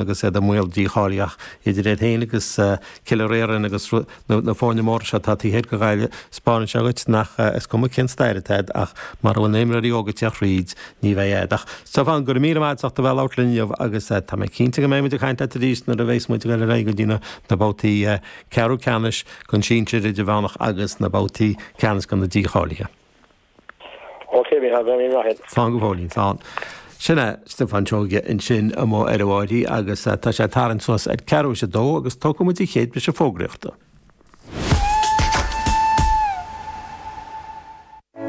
agus iad i mbaol dícháilíochta. Idir iad féin agus Cora Finne agus na foirne móra seo atá taobh thoir de Ghaillimh, 'speáineann sé dhuit gur cuma cén stair atá agat ach mura bhfuil na himreoirí óga ag teacht thríd, ní bheidh agat ach. Stiofán, Go raibh míle maith agat a bheith labhairt linn inniu agus tá mé cinnte go mbeidh muid ag caint leat arís nuair a bhéas muid ag dul ar aghaidh go dtí na babhtaí ceathrú ceannais den sinsir, idirmheánach agus na babhtaí ceannais den na dícháilithe. OK, we have any right. Slán go fóill, slán. Sin é Stiofán Seoige ansin amuigh ar an mbáidín agus tá sé ag tarraingt suas ag ceathrú tar éis a dó agus tógfaidh muid an chéad briseadh fógraíochta.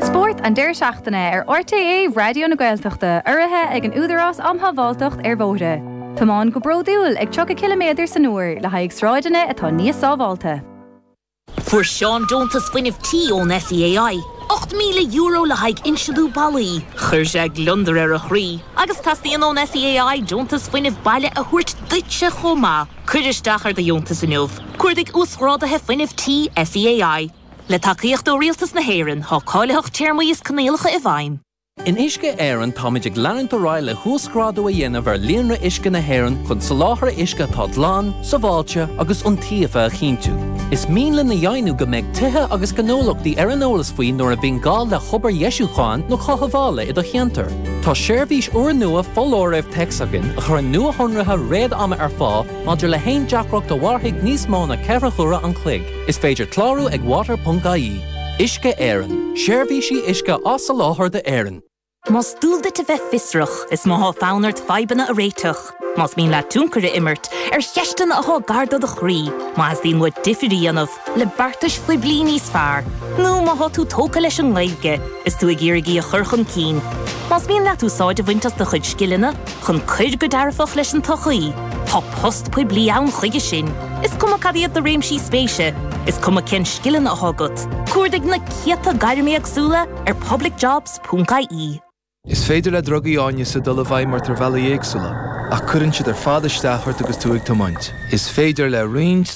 Spórt an deireadh seachtaine ar RTÉ Raidió na Gaeltachta urraithe ag an Údarás Um Shábháilteacht ar Bhóithre. Tiomáin go bródúil ag 30 ciliméadar san uair le haghaidh sráideanna atá níos sábháilte. Fuair Seán deontas Fuinnimh Tí ón SEAI, €8,000 le haghaidh insealú ballaí. Chuir sé gliondar ar a chroí agus teastaíonn ón SEAI deontas fuinnimh baile a thabhairt duitse chomh maith. Cuir isteach ar do dheontas inniu, Cuardaigh Uasghráduithe Fuinnimh Tí SEAI. Le tacaíocht ó Rialtas na hÉireann, tá cáilitheacht téarmaí is coinníollacha i bhfeidhm. In Uisce Éireann táimid ag leanúint ar aghaidh le huasghrádú a dhéanamh ar líonra uisce na hÉireann chun soláthar uisce atá glan, sábháilte agus iontaofa a chinntiú. Is mian linn a dheimhniú go mbeidh tithe agus gnólachtaí ar an eolas faoi nuair a bhíonn gá le hobair dheisiúcháin nó cothabhála i do cheantar. Tá seirbhís úrnua foláirimh téacs againn a chuireann nuashonruithe réad-ama ar fáil maidir le haon deacracht a mhairfidh níos mó ná ceithre huaire an chloig. Is féidir clárú ag water.ie. Uisce Éireann, Seirbhísí uisce á soláthar d'Éirinn. Más dual duit a bheith fiosrach, is má thá fonn ort fadhbanna a réiteach, más mian leat tionchar a imirt ar cheisteanna athá gar do do chroí, má theastaíonn uait difir a dhéanamh le beartais phoiblí níos fearr, nó má thá tú tógtha leis an nGaeilge is tú ag iarraidh í a chur chun cinn, más mian leat úsáid a bhaint as do chuid scileanna, chun cur go dearfach leis an tsochaí. Tá post poiblí ann chuige sin, is cuma cad iad do réimsí spéise, is cuma cé na scileanna atá agat, cuardaigh na céadta gairm éagsúla ar publicjobs.ie. Is féidir le drugaí áineasa dul i bhfeidhm ort ar bhealaí éagsúla, ach cuireann siad ar fad isteach ort agus tú ag tiomáint. Is féidir le roinnt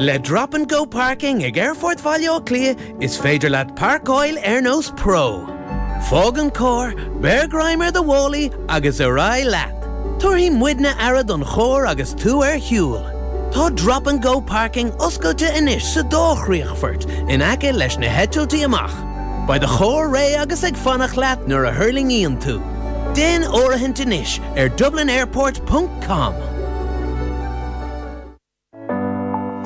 Le Drop and Go Parking ag Aerfort Bhaile Átha Cliath is féidir leat parcáil ar nós pro. Fág an carr, beir greim ar do mhálaí agus ar aghaidh leat. Tabharfaidh muidne aire don charr agus tú ar shiúl. Tá Drop and Go Parking oscailte anois sa dá chríochfort in aice leis na heitiltí amach. Beidh do charr réidh agus ag fanacht leat nuair a thuirlingíonn tú. Déan áirithint anois ar dublinairport ponc com.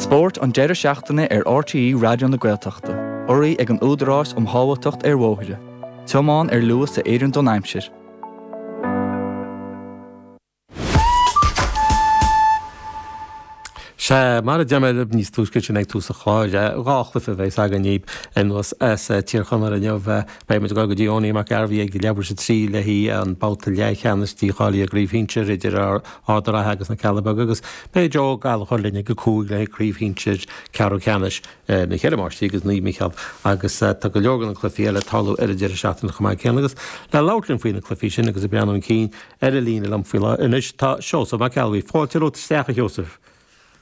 Spórt an deireadh seachtaine ar RTÉ Raidió na Gaeltachta, urraithe ag an Údarás um Shábháilteacht ar Bhóithre, tiomáin ar luas a oireann don aimsir. Sea, mar a deir mé libh níos túisce ansin ag tús an chláir, dhá chluife a bheas againn daoibh anuas as Tír Chonaill inniu. Beidh muid ag dul go dtí Owenie Mac Gairbheith ag leathuair tar éis a trí le haghaidh an babhta leathcheannais dícháilithe i gCraobh Shinsir idir ár Ard an Rátha agus na Cealla Beaga agus beidh Joe Ó Gallchóir linn ag a cúig le haghaidh craobh shinsir ceathrú ceannais na Ceithre Máistrí agus Naomh Mícheál agus tá go leor de na cluichí eile ag tarlú ar an deireadh seachtaine chomh maith céanna agus le labhairt linn faoi na cluichí sin agus ag breathnú chun cinn ar an líne liom faoi láthair anois tá Seosamh Mac Ceallabhuí. Fáilte romhat isteach a Sheosaimh.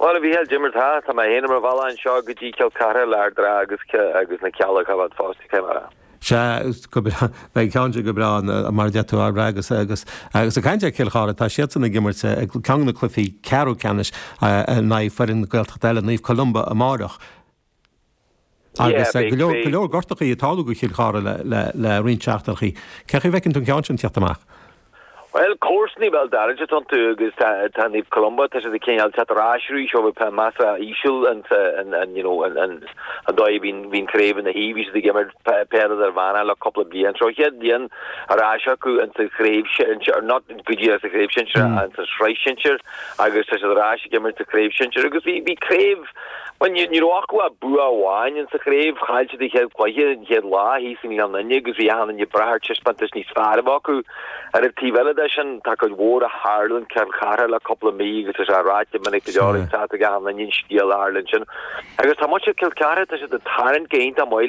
Bhuel, a Mhíchíl, cad é mar tá, tá mé féin ar mo bhealach anseo go dtí Cill Chartha le Ard an Rátha agus agus na Cealla Beaga fosta cé mar a. Sea, go breá, beidh ceann de go breá mar a deir tú Ard an Rátha agus agus agus ag caint ar Chill Chartha, tá siadsan ag imirt i gceann de na cluichí ceathrú ceannais in aghaidh foireann Gaeltachta eile, Naomh Columba amárach. agus go leor gortachaí ag tarlú do Chill Chartha le roinnt seachtaineachaí. Cé chaoi bhfeiceann tú an ceann sin ag teacht amach? Bhuel, comharsanaí béal dorais atá iontu agus tá Naomh Columba, tá siad ag cineál teacht ar ais arís ó bheith measartha íseal insa, you know, an dóigh a mbíonn craobh ina shuí, bhí siad ag imirt peil idirmheánach le cúpla bliain, seo an chéad bhliain ar ais acu insa chraobh shinsir, not go díreach insa chraobh shinsir ach insa Shraith Shinsir agus tá siad ar ais ag imirt sa Chraobh Shinsir agus bhí craobh Ní raibh acu ach bua amháin in sa chraobh, chaill siad an chéad chluiche an chéad lá thíos i nGleann Fhinne agus bhí achan duine ag brath ar taispeántas níos fearr acu. Ar an taobh eile de sin, tá cuid mhór a tharla in Cill Chartha le cúpla mí agus tá sé ráite minic go leor tá a fhios ag achan duine an scéal a tharla ansin agus tá muintir Chill Chartha, tá siad ag tarraingt go hiontach maith le